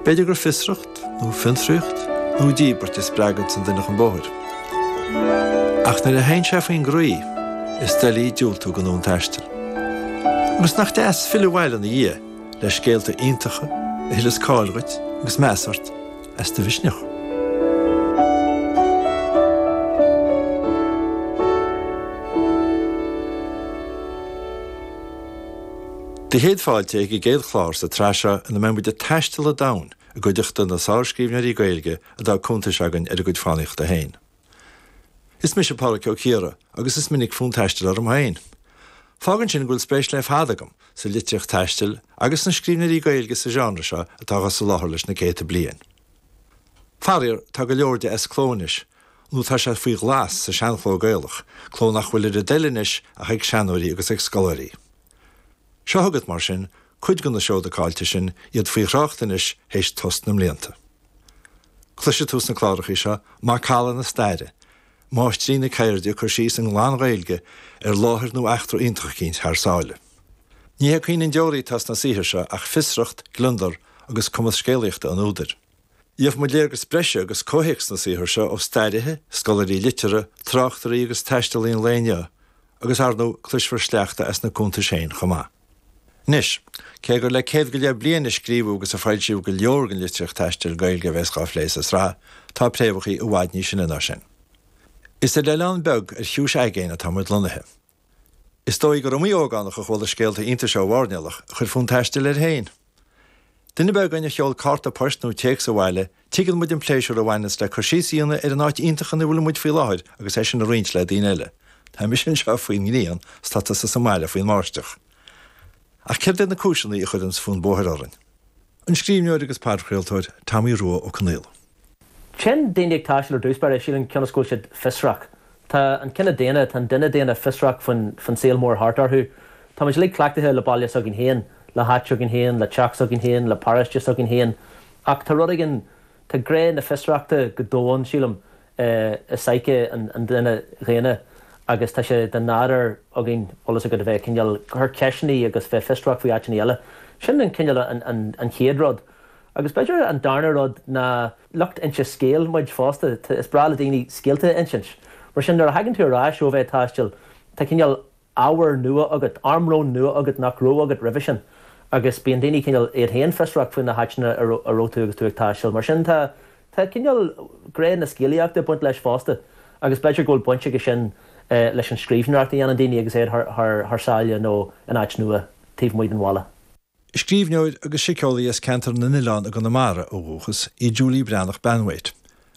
B'fhéidir gur fiosracht, nó fiontraíocht, nó díbirt a spreaganns an duine chun bóthair. Ach nuair a théann sé faoin gcroí, is doiligh diúltú don fhonn taistil. Agus nach deas filleadh abhaile ina dhiaidh le scéalta iontacha a thuilleas cáil dhuit agus meas ort as do mhisneach. Céad fáilte ag an gcéad chlár sa tsraith seo ina mbeidh muid ag taisteal an domhain i gcuideachta na sárscríbhneoirí Gaeilge a d'fhág cuntais againn ar a gcuid fánaíochta féin. Is mise Pádhraic Ó Ciardha agus is minic fonn taistil orm féin. Fágann sin go bhfuil spéis le fada agam sa litríocht taistil agus sna scríbhneoirí Gaeilge sa genre seo atá dhá soláthar leis na céadta bliain. Faraor, tá go leor de as cló anois, nó tá sé faoi ghlas sa seanchló Gaelach, cló nach bhfuil ar a dtoil anois ach ag seanóirí agus ag scoláirí. Seo chugat, mar sin, cuid de na seoda caillte sin, iad faoi thrácht anois th'éis tost na mblianta. Cloisfidh tú sna clárachaí seo macalla na staire, máistir na ceirde ag cur síos i nglan-Ghaeilge ar áit nó eachtra iontach eicínt thar sáile. Ní hé caoineadh an deoraí atá sna saothair seo ach fiosracht, gliondar agus cumas scéalaíochta an údair. Gheobhaidh muid léargas breise agus comhthéacs na saothar seo ó stairithe, scoláirí liteartha, tráchtairí agus taistealaí an lae inniu, agus ar ndóigh cloisfear sleachta as na cuntais féin chomh maith. Anois, cé gur le céad go leith bliain a scríobhadh agus a foilsíodh go leor den litríocht taistil Gaeilge a bheas dhá phlé sa sraith, tá préamhacha i bhfad níos sine ná sin. Is ar oileán beag ar chiumhais aigéin atá muid lonnaithe. Is dóigh gur iomaí ógánach a chuala scéalta iontais ó mhairnéalach a chuir fonn taistil air féin. Duine ar bith againn a sheol cárta poist nó téacs abhaile, tuigeann muid an pléisiúr a bhaineanns le cur síos a dhéanamh ar an áit iontach ina bhfuil muid faoi láthair agus é sin a roinnt le daoine eile. Tá mise anseo faoin ngrian, tá tusa sa mbaile faoin mbáisteach. Ach céard iad na cúiseanna a chuireanns fonn bóthair orainn? An scríbhneoir agus podchraoltóir Tomaí Rua Ó Conghaile. Téann daoine ag taisteal ar an chéad dul síos, sílim cionn is go bhfuil siad fiosrach. Tá an cine daonna, tá an duine daonna fiosrach faoin saol mór thart orthu. Tá muid uilig cleachtaithe le baile s'againn féin, le háit s'againn féin, le teach s'againn féin, le paróiste s'againn féin. Ach tá rud éigin, tá gné na fiosrachta go domhain, sílim, i psyche an duine dhaonna agus tá sé de nádúr againn, tá a fhios agat, a bheith ag cineál cur ceisteannaí agus bheith fiosrach faoi áiteannaí eile. Sin an cineál an chéad rud. Agus b'fhéidir an darna rud ná lucht inse scéil muid fosta. Is breá le daoine scéalta a insint. Mar sin nuair a thagann tú ar ais ó bheith ag taisteal tá cineál ábhar nua agat, armlón nua agat nach raibh agat roimhe sin agus bíonn daoine cineál iad féin fiosrach faoi na háiteanna a raibh tú agus tú ag taisteal. Mar sin tá cineál gné na scéalaíochta ag baint leis fosta agus b'fhéidir go bhfuil baint aige sin leis an scríbhneoireacht a dhéanann daoine agus iad thar sáile nó in áit nua taobh amuigh den bhaile. Scríbhneoir agus síceolaí as Ceantar na nOileán i gConamara ó dhúchas í Julie Breathnach-Banwait.